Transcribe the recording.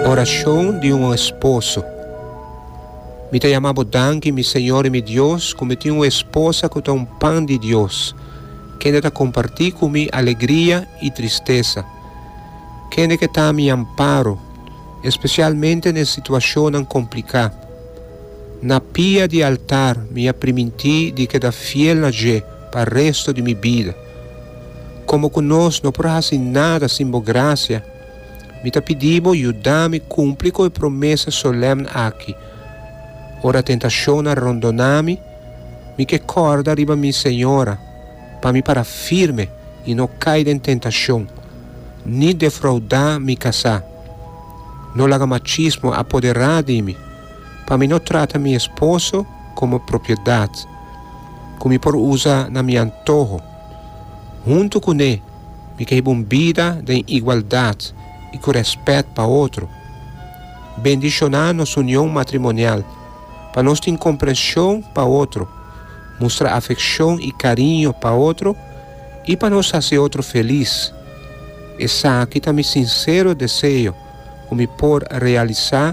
Oracion di un esposo. Mi ta yama bo danki, mi Señor i mi Dios, cu mi tin un esposa cu ta un pan di Dios, kende ta comparti cu mi alegria i tristesa, kende ke ta mi amparo, especialmente n'e situacionnan complica. Na pia di altar mi a priminti di keda fiel na dje pa resto di mi bida. Komo ku nos no por hasi nada sin bo grasia, mi ta pidi bo yuda mi kumpli ku e promesa solèmn aki. Ora tentashon a rondoná mi, mi ke kòrda riba mi Señora pa mi para firme i no kai den tentashon, ni defroudá mi kasá. No laga machismo apoderá di mi. Pa mi no trata mi esposo komo propiedat ku mi por usa na mi antoho. Huntu kuné mi ke hiba un bida den igualdat i ku rèspèt pa otro. Bendishoná nos union matrimonial pa nos tin komprenshon pa otro, mustra afekshon i kariño pa otro i pa nos hasi otro felis. Esaki ta mi sinsero deseo ku mi por realisá